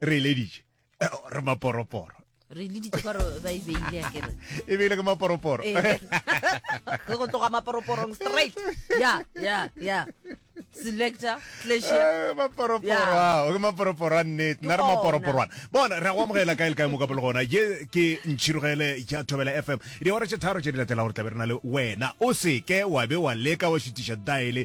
re eleditše eh, re maporoporo re leditše gore ba e beile akere e beile ke maporoporo eh. re go tloga maporoporong straight ya ya ya selector eh, maporoporo ke maporoporo a nnete nna re maporoporwana bona re go amogela kae le kae mo ka pele gona je ke ntšhirogele ja thobela fm diora tše tharo tše di latela gore tlabe re na le wena o seke wa be wa leka wa šitiša daele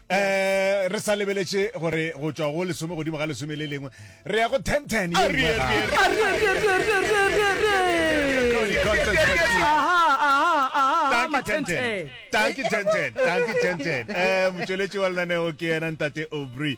Eh, re sa lebeletše gore go tšwa go lesome godimo ga lesome le lengwe re ya go ten ten ye nngwe gape. Danke, ten, ten. Danke, ten, ten. Danke, ten, ten. Eh, motšweletši wa lenaneo ke yena ntate aubrey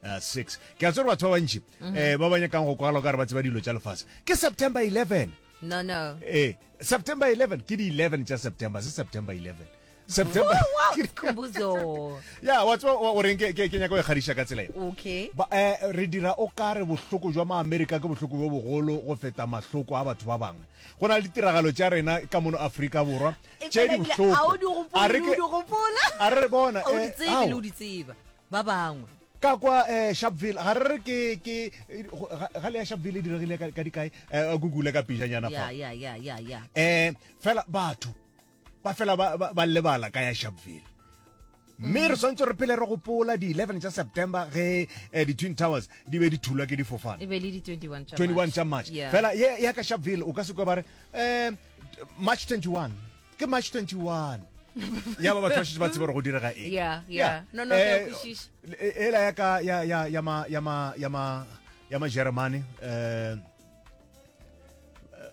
Uh, six ke a tsere batho ba bantši um ba ba nyakang go kwala ka re ba tseba dilo tša lefase ke september 11 no no ee eh, september 11 ke di 11 tša september se september 11 september ya wa tswa o reng ke ke nyaka go ikgadiša ka tsela okay ba eh re dira o ka re bohloko jwa ma america ke bohloko bo bogolo go feta mahloko a batho ba bangwe go na le ditiragalo tša rena ka mono afrika borwa tše di bohloko a re bona eh, ba bangwe. Ka kwa eh, Sharpeville, ga re re ke, ke, ga- ga le ya Sharpeville e diregile ka, ka dikae? Eh, a Google ka pijanyana fa. ya ya ya ya ya Eh, fela batho, ba fela ba, ba, ba lebala ka ya Sharpeville. Mme re swantse re pele re gopola di 11 tša September ge eh, di-Twin Towers di be di thulwa ke difofane. e be le di 21 tša 21 tša March. Yeah. Fela ye ya ka Sharpeville o ka se kwa ba re eh, March 21. ke march 21 ya ba batho ba šetse ba tseba gore go direga eng Yeah, yeah. No, no, ke a Eh, kwešiša. e- ela ya ka ya ya ya ma ya ma ya ma ya ma germany eh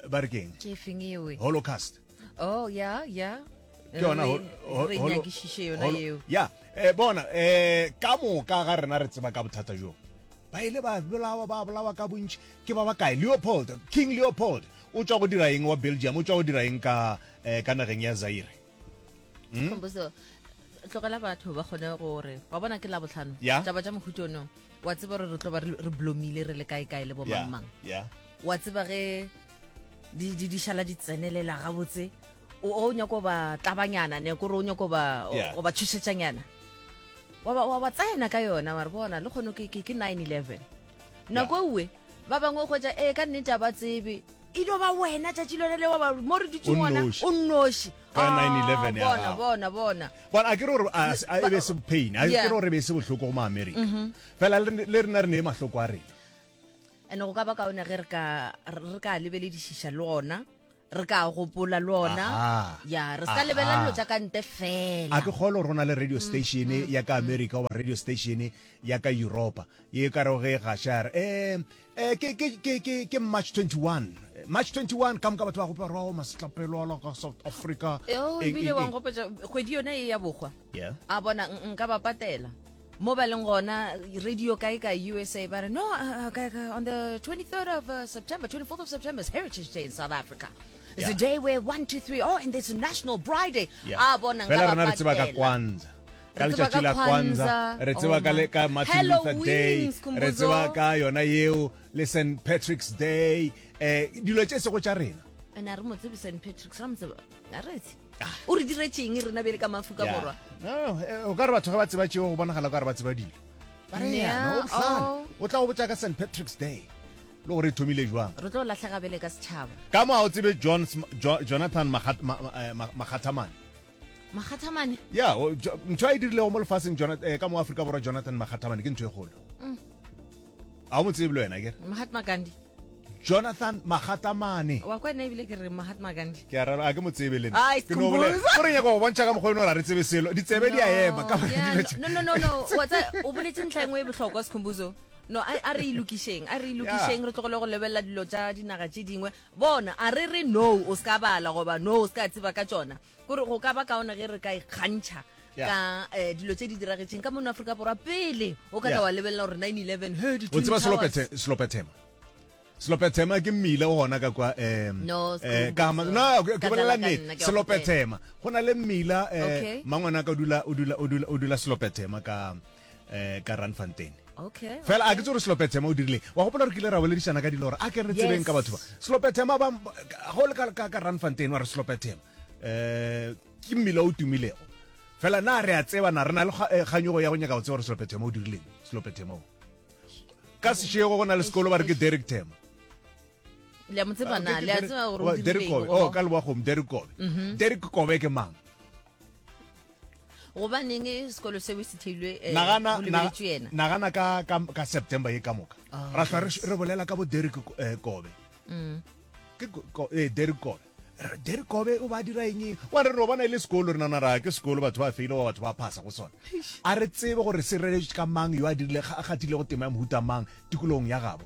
ba re ke eng ke feng ewe holocaust oh ya ya ke yona hol- hol- re holo- nyakišiše yona holo- eo ya eh, bona eh ka moka ga rena re tseba ka bothata jo ba ile ba bolawa ba bolawa ka bontši ke ba bakae leopold king leopold O tšwa go dira eng wa Belgium? O tšwa go dira eng ka eh, ka nageng ya Zaire? Hmm? Khombuzo, tlogela batho ba kgone gore wa bona ke la botlhano Yeah. taba tša mohuta ono wa tseba gore re tlo ba re re blomile re le kae kae le bo Yeah, mangmang yeah. wa tseba ge di di- di šala di tsenelela gabotse o o nyako ba tlabanyana ne kore o nyako ba Yeah. o ba tšhošetšanyana wa ba- wa ba tsena ka yona wa re bona le kgone ke ke- ke 9 11 nako ewe ba bangwe kgotsa ee ka nnete a ba tsebe e dio ba wena tšatši lone le wa mo re dutse ngwana o nnoši bona bona bona but a ke re gore e be se pain a ke re gore e be se bohloko go maamerika mhm. fela le rena re ne e mahloko a rena and go ka ba kaone ge re ka lebeledišiša le ona re ka gopola le ona ya re sa lebela dilo tša ka nte fela a ke kgolo rona le radio mm, station mm, ya ka mm. america goba radio station ya ka europa ye ka rego ge gašar um eh, eh, ke march 21 march 21 ka moka batho ba gopa rao masetlapelwala ka south africa ebile wa nkgopetsa kgwedi yone e ya bokgwa a bona nka ba patela mo ba leng gona radio kae ka usa ba re no uh, uh, on the 23rd of uh, september 24th of september is heritage day in south africa It's yeah. a day where one, two, three, oh, and there's a national bride day. Yeah. Ah, bona nga ba patela. ka Kwanzaa. ka letšatši la kwanza re tseba ka le ka martin luther day re tseba ka yona yeo le st patrick's day um dilo tše sego tša rena ana re mo tsebe st patrick's ra mo tseba a retse o re diretšeng rena bjele ka mafu ka borwa eh, o ka re batho ga ba tseba tšeo go bonagala ka re ba tseba dilo ba re yana o tlhale oh. o tla go botsa ka st patrick's day le gore e thomile jwang re tlo latlhega bele ka setšhaba ka mo ga o tsebe jonathan makgathamane eh, makgathamane ya ntho a e dirilego mo lefatsheng eh, ka mo aforika borwa jonathan makgathamane ke ntho e kgolo mm. a o mo tsebe le wena kere mahatma gandhi jonathan magatamane wa kwa nna ebile ke re mahatma gandhi ke a rara a ke mo tsebe le nna Ai, ke no bolela Skhumbuzo. o re nyaka go bontšha ka mokgwa o ne o ra re tsebe selo ditsebe di a ema ka baka la dilo tše. no no no no wa tsa o boletse ntlha engwe e bohlokwa sekhumbuzo no a a re ilokišeng a re ilokišeng re tlogole go lebelela dilo tša dinaga tše dingwe bona a re re no o se ka bala goba no o se ka tseba ka tšona kore go ka ba kaone ge re ka ikgantšha Yeah. ka eh, dilo tse di diragetseng ka mono aforika borwa pele o ka Yeah. tla wa lebelela gore 911 he di o Twin tseba Towers. selopethe- selopethema selopethema ke mmila o gona ka kwa em, No, eh, Skhumbuzo. ka ma- no, ke- ke Ka bolela tlala ka nna, nnete ke a selopethema go na le mmila eh, Okay. mangwana ka o dula- o dula- o dula- o dula selopethema ka um ka ranfontain okay fela a ke tse gore selopetsema o dirileng wa gopola gore ke ile ra boledišana ka dilo gore a ke re tsebeng ka batho ba selopetsema ba go le ka ranfontain wa re selopetsema um ke mmila o tumilego fela na re a tseba na re na le eh, kganyogo ya go nyaka go tseba gore selopetsema o dirileng selopetsema o ka sešego go na le sekolo ba re ke derek tema le mo tsebana le a tseba gore o dirile eng oh ka le wa go derek kobe mhm. derek kobe ke mang gobaneng sekolo seo e se theilwe eh, nagana go lebeletswe yena na- nagana ka, ka, ka september ye ka moka Oh, ra hlwa re, re bolela ka bo derek eh, kobe Mm. ke ko- ko- eh, derek kobe Re- derek kobe o ba dira eng wa re re o bona e le sekolo re nana ra ke sekolo batho ba feile wa batho ba phasa go sone a re tsebe gore se reletše ka mang yo a dirile ga- a gatilego tema ya mohuta mang tikologong ya gabo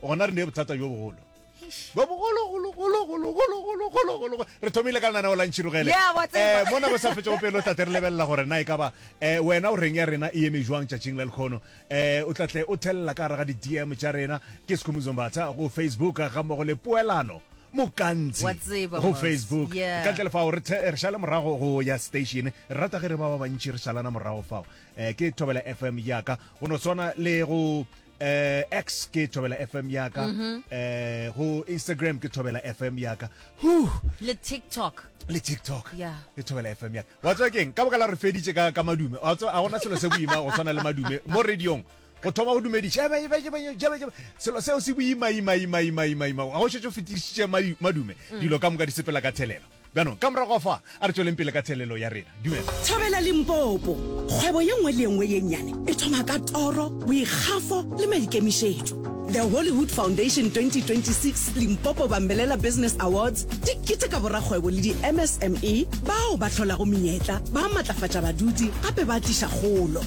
gona re ne bothata bjo bogolo bo bogologologologologologologolo re thomile ka lenaneo la ntšhirogele um mona bo sa fetšego pele o tla tle re lebelela gore na e ka ba um wena o reng ya rena e eme jwang tšatšing la lekgono um o tla tle o thelela ka gare ga di-dm tša rena ke sekhomuzombatha go facebook ga mmogo le poelano mokantsi go facebook ka ntle le fao re šale morago go ya station re rata ge re ba ba bantši re šalana morago fao um ke thobela fm yaka go no swana le go eh, x ke thobela fm yaka mm -hmm. eh, go instagram ke thobela fm yaka huh. le tiktok le tiktok yeah. le thobela fm yaka wa tswa keng ka boka la re feditše ka, ka madume wa tswa a gona selo se boima go tshwana le madume mo radiong go thoma go dumediša selo seo se boimaimaimaimaima ga go šetse o fetišitše madume mm. dilo ka moka di sepela ka thelelo Bjanong, ka morago ga fa, a re tšweleng pele ka theelelo ya rena. Dumela. Thobela Limpopo. Kgwebo ye nngwe le ye nngwe ye nnyane e thoma ka toro, boikgafo le maikemišetšo. The Hollywood Foundation 2026 Limpopo Bambelela Business Awards di keteka borakgwebo le di-MSME bao ba hlolago menyetla, ba matlafatša badudi gape ba tliša kgolo.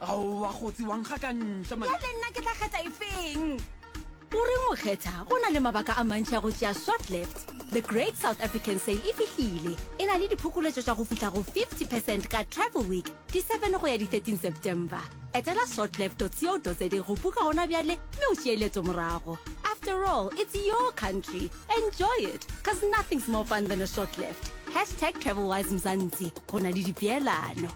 Aowa kgotsi wa nkga ka ntle man. Bjale nna ke tla kgetha efeng? O reng o kgetha? Go na le mabaka a mantši a go tšea Swap Left. The Great South African Sale e fihlile. E na le diphokoletšo tša go fihla go 50 percent ka Travel Week, di 7 go ya di 13 September. Etela swatleft.co.za go buka gona bjale mme o tšee leeto morago. After all, it's your country. Enjoy it, cause nothing's more fun than a short left. Hashtag TravelWise Mzansi, go na le dipeelano.